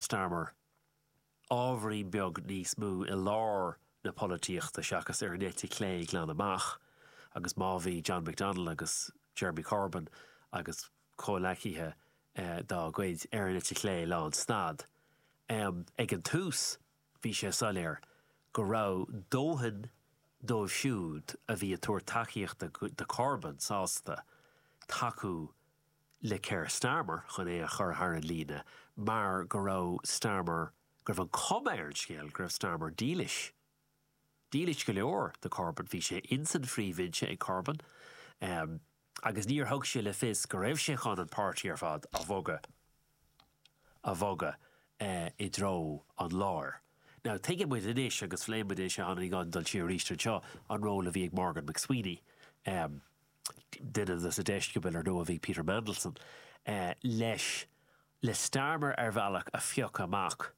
Starmer, ábhairín beag níos mó i lár na polaitíochta seachas ar an eite chlé glan amach, agus má bhí John McDonnell agus Jeremy Corbyn agus comhleacaithe dá gcuid ar an eite chlé lánstad ag an tús, bhí sé soiléir go raibh dóthain díobh siúd a bhí ag tabhairt tacaíochta do Corbyn sásta tacú le Keir Starmer chun é a chur thar an líne mar go raibh Starmer, go raibh an chuma ar an scéal go raibh Starmer dílis, dílis go leor do Corbyn, bhí sé ins an phríomhbhinse ag Corbyn agus níor thug sé le fios go raibh sé chun an páirtí ar fad a bhogadh, a bhogadh i dtreo an láir. Now tuigeann muid anois agus phléigh muid é seo cheana, gan dul siar arís anseo, an ról a bhí ag Morgan McSweeney. Duine des na deisceabail ar ndóigh a bhí Peter Mandelson leis, le Starmer ar bhealach a phiocadh amach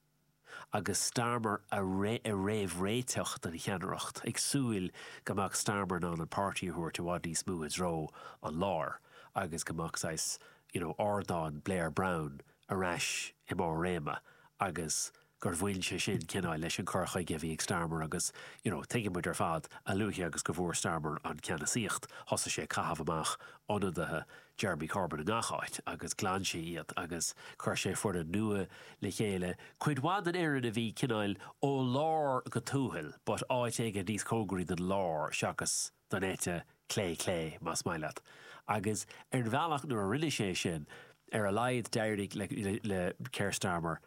agus Starmer a réamhréiteach don cheannaireacht, ag súil go mbeadh Starmer in ann an páirtí a thabhairt i bhfad níos mó i dtreo an láir agus go mbeadh saghas, you know, ardán Blair-Brown ar ais i mbarr a réime agus gur bhain sé sin cineál leis an cur chuige a bhí ag Starmer agus you know tuigeann muid ar fad, a luaithe agus go bhfuair Starmer an ceannasaíocht, thosaigh sé ag caitheamh amach ionadaithe Jeremy Corbyn i ngach áit agus ghlan sé iad agus chuir sé foireann nua le chéile, cuid mhaith den fhoireann a bhí cineál ó lár go tuathal but áit éigin níos cóngaraí don lár seachas don eite chlé, clé más maith leat, agus ar bhealach nuair a rinne sé sin, ar a laghad d'éirigh le Keir Starmer.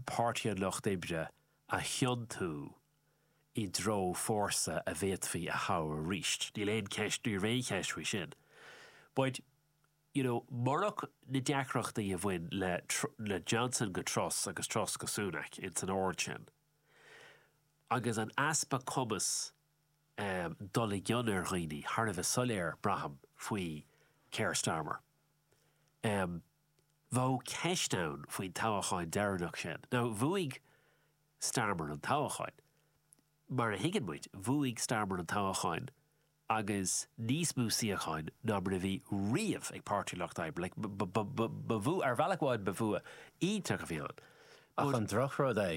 Páirtí an Lucht Oibre a thiontú i dtreo fórsa a bhféadfaí a thoghadh arís. Níl aon cheist, ní raibh aon cheist faoi sin. But, you know, murach na deacrachtaí a bhain le le Johnson go Truss agus Truss go Sunak, ins an ord sin, agus an easpa cumas dul i gcion ar dhaoine, thar a bheith soiléir, braithim, faoi Keir Starmer. Bheadh ceist ann faoin toghachán deireanach sin. Now bhuaigh Starmer an toghachán. Mar a thuigeann muid, bhuaigh Starmer an toghachán agus níos mó suíocháin ná mar a bhí riamh ag Páirtí an Lucht Oibre. Ba bhua, ar bhealach amháin ba bhua iontach a bhí ann. Ach an drochrud é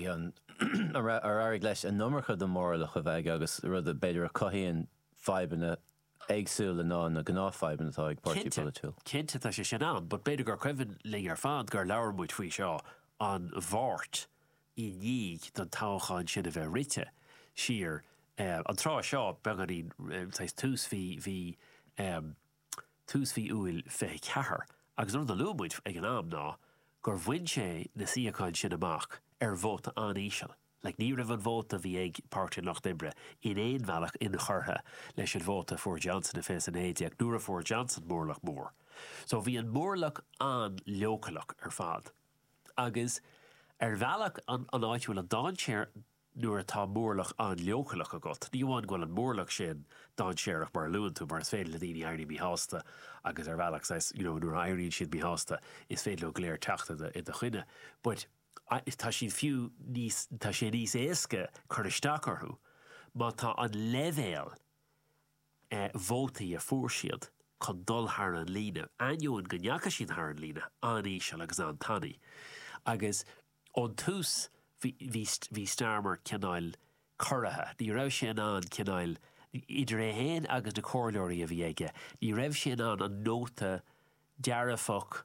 nuair a éirigh leis an iomarca den mhórlach a bheith aige agus rud a b'fhéidir a chothaíonn fadhbanna éagsúla ná na gnáthfhadhbanna atá ag páirtí polaitiúil. Cinnte, cinnte tá sé sin ann, but b'fhéidir gur cuimhin linn ar fad gur labhair muid faoi seo an Mháirt i ndiaidh don toghchán sin a bheith rite siar. An tráth seo, beagáinín saghas tús mhí, mhí, tús mhí Iúil 24, agus an rud a luaigh muid ag an am ná gur bhain sé na suíocháin sin amach ar vóta an-íseal. like ní raibh an vóta bhí ag Páirtí an Lucht Oibre in aon bhealach inchurtha leis an vóta a fuair Johnson i 2019, nuair a fuair Johnson móramh mór. So bhí an móramh an-leochaileach ar fad. Agus ar bhealach an an áit a bhfuil an dainséar nuair atá móramh an-leochaileach agat, ní amháin go bhfuil an móramh sin dainséarach mar a luann tú mar is féidir le daoine éirí míshásta agus ar bhealach saghas, you know nuair a éiríonn siad míshásta is féidir leo go léir teacht i do choinne but. tá siad fiú níos, tá sé níos éasca cur isteach orthu má tá an leibhéal vótaí a fuair siad chun dul thar an líne, ainneoin go ndeachaigh siad thar an líne, an-íseal agus an-tanaí. Agus ón tús bhí Starmer cineál corraithe. Ní raibh sé in ann cineál, idir é féin agus na comhairleoirí a bhí aige, ní raibh sé in ann an nóta dearfach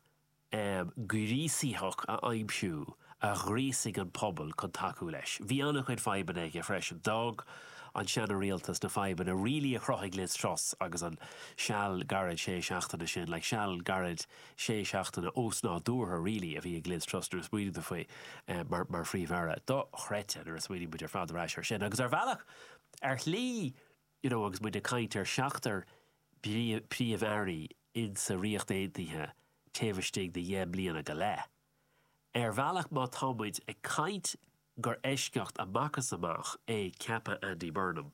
gríosaitheach a aimsiú a ghríosaigh an pobal chun tacú leis. Bhí an-chuid fadhbanna aige freisin. D'fhág an seana-Rialtas na fadhbanna really a chruthaigh Liz Truss agus an seal gairid sé seachtaine sin like seal gairid sé seachtaine ósnádúrtha really a bhí ag Liz Truss nuair a smaoinigh tú faoi mar Phríomh-Aire. Dochreidte nuair a smaoinigh muid ar fad ar ais air sin. Agus ar bhealach, ar shlí, you know agus muid ag caint ar sheachtar príomh-airí insa Ríocht Aontaithe taobh istigh de dheich mbliana go leith, ar bhealach má tá muid ag caint gur eisceacht amach is amach é ceapadh Andy Burnham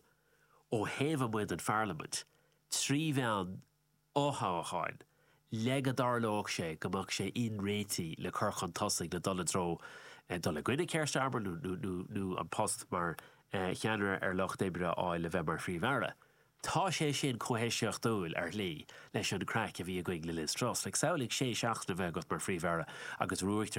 ó thaobh amuigh den Pharlaimint, trí bhealach fothoghcháin, le go dtarlódh sé go mbeadh sé inréitigh le cur chun tosaigh le dul i dtreo dul i gcoinne Keir Starmer nó an post mar cheannaire ar Lucht Oibre a fháil le bheith mar Phríomh-Aire. Tá sé sin chomh heisceachtúil, ar shlí, leis an gcraic a bhí againn le Liz Truss. Samhlaigh sé seachtaine a bheith agat mar Phríomh-Aire agus ruaigtear